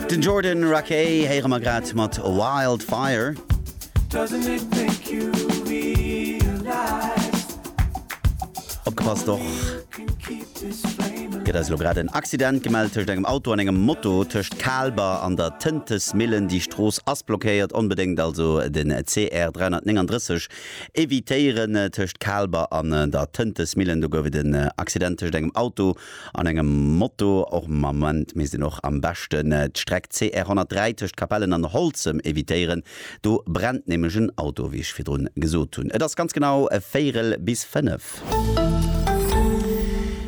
Den Jordan Rakei héiere mer grad mat Wildfire. Opgepasst, och gëtt eis elo grad en Accident gemellt tëscht engem Auto an engem Moto tëscht Kaalber an der Tëntesmillen. Déi Strooss ass blockéiert, onbedéngt also den CR 339 evitéieren tëscht Kaalber an der Tëntesmillen. Do gouf et en Accident tëscht engem Auto An engem Moto och Moment misst een och am beschten d'Streck CR 103 tëscht Capellen an Holzem evitéieren, do brennt nämlech en Auto, wéi ech virdrun gesot hunn. Et ass ganz genau e Véierel bis fënnef.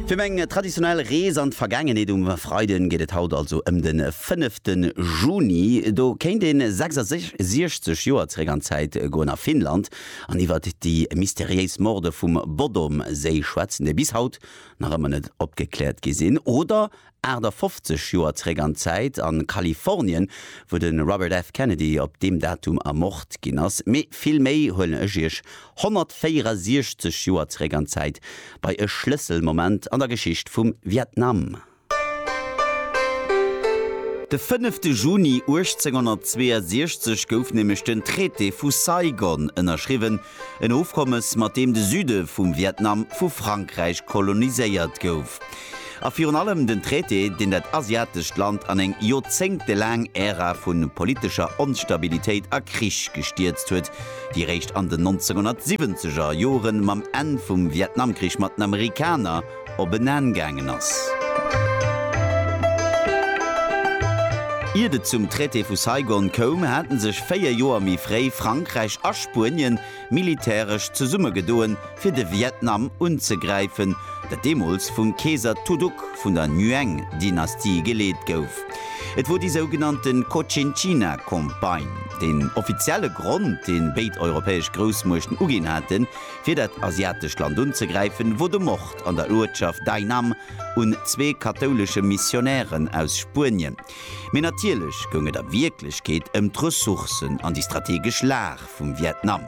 Fir meng traditionell Rees an d'Vergaangenheet um Freiden geet et haut also ëm de fënnefte Juni. Do kéint ee 66 Joer zeréck an d'Zäit goen a Finnland an iwwert déi mysteriéis Morde vum Bodom-Séi schwätzen, déi bis haut nach ëmmer net opgekläert gi sinn, oder 58 Joer zeréck an d'Zäit a Kalifornien, wou de Robert F. Kennedy op deem Datum ermort ginn ass, mee vill méi huelen ech Iech 164 Joer zeréck an d'Zäit, bei e Schlësselmoment an der Geschicht vum Vietnam. De fënnefte Juni 1862 gouf nämlech den Traité vu Saigon ënnerschriwwen, en Ofkommes, mat deem de Süde vum Vietnam vu Frankräich koloniséiert gouf. A virun allem den Traité, deen dat asiatescht Land an eng joerzéngtelaang Ära vu politescher Onstabilitéit a Krich gestierzt huet, déi eréischt an den 1970er Jore mam Enn vum Vietnamkrich mat den Amerikaner, op en Enn gaangen ass. Iert et zum Traité vu Saigon koum, hate sech véier Joer méi fréi Frankräich a Spuenien militäresch zesummegedoen, fir de Vietnam unzegräifen, dat deemools vum Keeser Tu Duc vun der Nguyen-Dynastie geleet gouf. Et wor déi sougenannte Cochinchina-Campagne. Den offizielle Grond, dee béid europäesch Groussmuechten uginn haten, fir dat asiatescht Land unzegräifen, wou de Mord an der Uertschaft Dai Nam un zwee kathoulesche Missionären aus Spuenien, mee natierlech goung et a Wierklechkeet ëm d'Ressourcen an déi strategesch Lag vum Vietnam.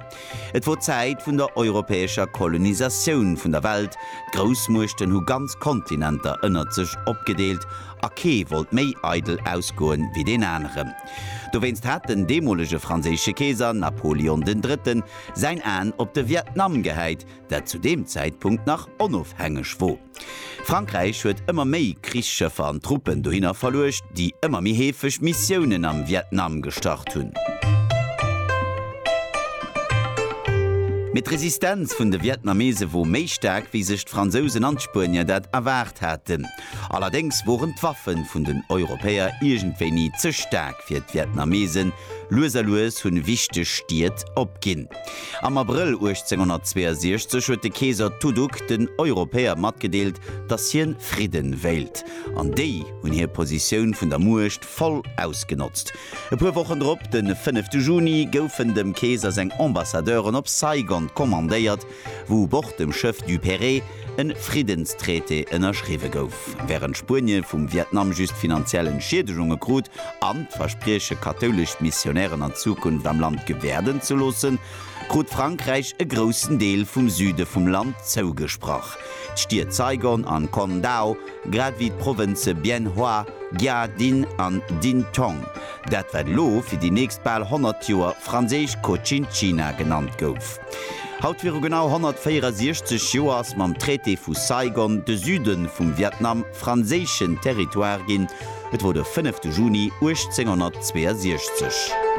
Et wor d'Zäit vun der europäescher Kolonisatioun vun der Welt, d'Groussmuechten hu ganz Kontinenter ënnert sech opgedeelt a kee wollt méi eidel ausgoen wéi deen aneren. Dowéinst hat den deemolege franséische Keeser Napoleon den Drëtten säin Aen op de Vietnam gehäit, dat zu deem Zäitpunkt nach onofhängeg wor. Frankräich huet ëmmer méi Krichsschëffer an Truppen dohinner verluecht, déi ëmmer méi heefeg Missiounen am Vietnam gestart hunn. Mee d'Resistenz vun de Vietnamese wor méi staark, wéi sech d'Fransousen an d'Spuenier dat erwaart haten. Allerdéngs woren d'Waffen vun den Europäer iergendwéi ni ze staark fir d'Vietnamesen. Lues a lues hunn wichteg Stied opginn. Am Abrëll 1862 huet de Keeser Tu Duc den Europäer matgedeelt, dass hien Fridden wéilt. An déi hunn hir Positioun vun der Muecht voll ausgenotzt. E puer Wochen drop, den fënnefte Juni, goufen dem Keeser seng Ambassadeuren op Saigon kommandéiert, wou u Bord dem Schëff Duperré en Friddenstraité ënnerschriwwe gouf, wärend Spuenien vum Vietnam just finanziell Entschiedegungen krut an d'Versprieche kathoulesch Missionären an Zukunft am Land gewäerden ze loossen, krut Frankräich e groussen Deel vum Süde vum Land zougesprach, d'Stied Saigon an Con Dao, grad wéi d'Provënze Bien Hoa, Gia Dinh an Dinh Tong, dat wat elo fir déi nächst bal 100 Joer franséisch Cochinchina genannt gouf. Haut viru genau 164 Joer ass mam Traité vu Saigon de Süde vum Vietnam franséischen Territoire ginn. Et wor de 5 Juni 1862.